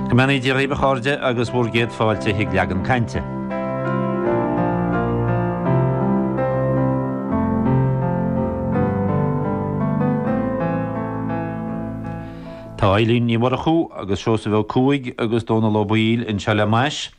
Go mbeannaí Dia dhaoibh a chairde agus bhur gcéad fáilte chuig Leagan Cainte. Tá Eileen Ní Mhurchú agus Seosamh Ó Cuaig agus Dónal Ó Baoill anseo le m'ais.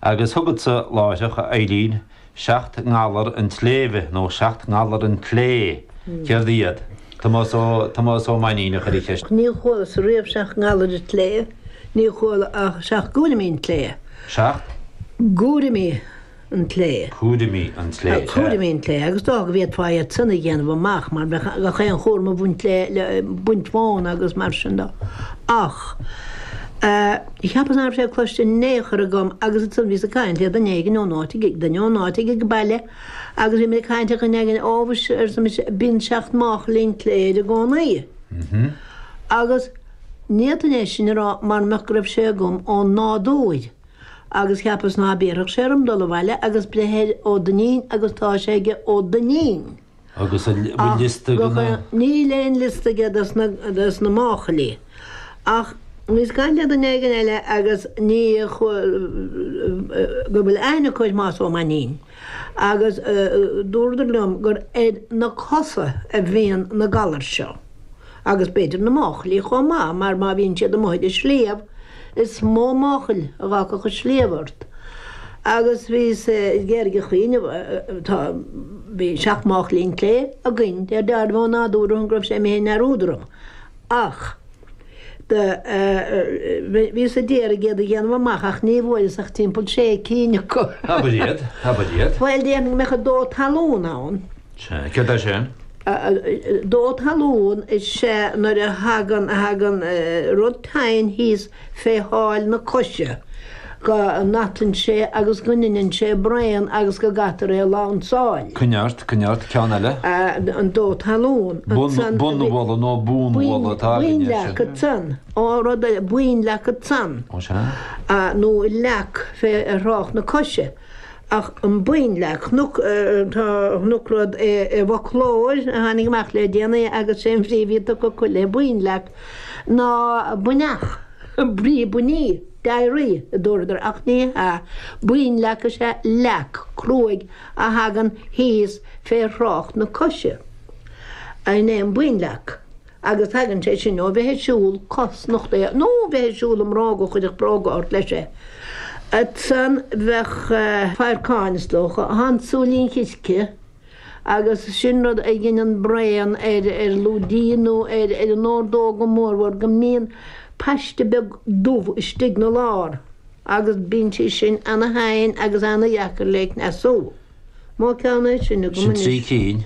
Agus chugatsa láithreach a Eileen seacht ngalar an tsléibhe nó seacht ngalar an tslé, céard iad? Tomás Ó, Tomás Ó Mainnín a chuir an cheist. Ní chualas riamh seacht ngalar an tslé, ní chuala ach seacht gcúraimí an tslé. Seacht? gcúraimí an tslé. Cúraimí an tslé, sea. Cúraimí an tslé, agus dócha go bhféadfá iad san a dhéanamh amach mar bheadh gach aon chúram ag baint leo, baint mhóna agus mar sin do. Ach. Cheapas ná raibh sé cloiste in ao' chor agam agus ansan bhíos ag cainnt le duine éigin ó'n áit ag, duine ó'n áit ag ag baile agus bhíomair ag cainnt ar dhuine éigin Ó mhuise arsa mise bíonn seacht máchailí an tslé air i gcónaí agus ní fhéadfainn é sin a rá mara mbeadh go raibh sé agam ó'n nádúir agus cheapas ná béarfadh sé orm dul abhaile agus breith ar Ó Duinnín agus tá sé aige Ó Duinnín. Agus an bhfuil liosta de na. Níl aon liosta aige des na máchailí. Ach bhíos ag caint le duine éigin eile agus daoine go bhfuil aithne acu ar Thomás Ó Mainnín. Agus dúradar liom gur ar na cosa a bhíonn na galair seo. Agus b'fhéidir na máchailí chomh maith mar má bhíonn siad amuigh ar an sliabh is mó máchail a dh'fhágfadh an sliabh ort. Agus bhí sé i gceird a chaoineadh tá bhí seacht máchailí an tslé againn de réir dealraimh ó nádúr go raibh sé i m'fhéin ar údaram. Ach do bhíos ag iarraidh iad a dhéanamh amach ach ní bhfuaireas ach timpeall sé cinn acu. Abair iad, abair iad. Bhuel déarfainn go mbeadh an dó talún ann. Céard é sin? Dó talún is ea nuair a thagann, a thagann rud teinn thíos fé sháil na coise go n-atann sé agus go ndineann sé braon agus go gcaithtear é a lansáil. Coinnigh ort, coinnigh ort, ceann eile? An dó talún. Bonn, bonnbhualadh nó bonnbhualadh atá againne. Boinnleac ansan. Ó rud ar, boinnleac ansan. Ó sea. Nó leac fé thrácht na coise. Ach an boinnleac chonac, do chonac rud i bhfoclóir a tháinig amach le déanaí agus 's é an bhrí a bhí tugtha acu le boinnleac ná buinneach, brí buinní, diarrhoea, a dúradar ach ní hea, boinnleac is ea leac cruaidh a thagann thíos fé thrácht na coise. An é an boinnleac. Agus tagann sé sin ó bheith ag siúl cos nochtaithe nó bheith ag siúl i mbróga a chuirfeadh bróga ort leis é. Ansan bheadh fadharcáin, is dócha, ann, súilín circe, agus sin rud a dheineann braon ar lúidín nó ar an órdóg go mórmhór go mbíonn paiste beag dubh istigh 'na lár agus bíonn sé sin ana-theinn agus ana-dheacair le cneasú. Mo cheann é sin agam Sin anois. trí cinn